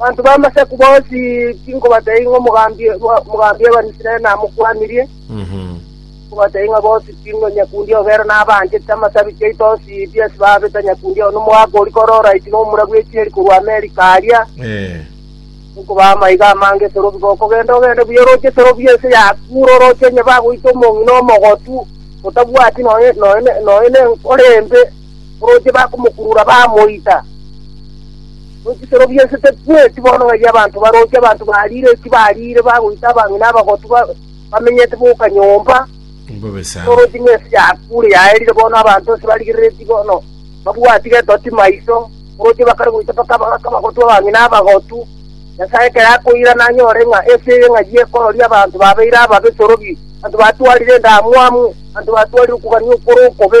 Abanto b'Amasaku bonsi tinkobatebia ing'o omogambi omogambi Abanisraeli namokwanirie, nkobatebia ng'a bonsi ting'o nyakundi obo ere nabaanchete amasabi chiaito onsi Ibiasi babeta nyakundi obo nomogaka oria kore oraiti na omura bw'echieri korwa Amerika aria, nkobaha amaiga amange esero obiga okogenda ogende buya oroche esero buya ense ya Kuro oroche onye bagoita omong'ina omogotu, otabwati nonya nonya nonya nenkoro embe, Oroche bakomokurura bamoita. Echisero bi'ense tebigweti bono ng'ai abanto baroche abanto bariire eki bariire bagoita abang'ina abagotu ba- bamenyete boka nyomba. Mbobe sana. Oroche ng'ense yakure yaerire bono abanto ase barigerereti bono babwati getoti maiso. Oroche bakare goita mpaka aba- mpaka abagotu abang'ina abagotu. Nyasae ekero akoira nanyore ng'a ense eye ng'ai ekororia abanto babeire ababe esorobi, abanto batwarire endamwamu, abanto batwarire okogania okore okobe,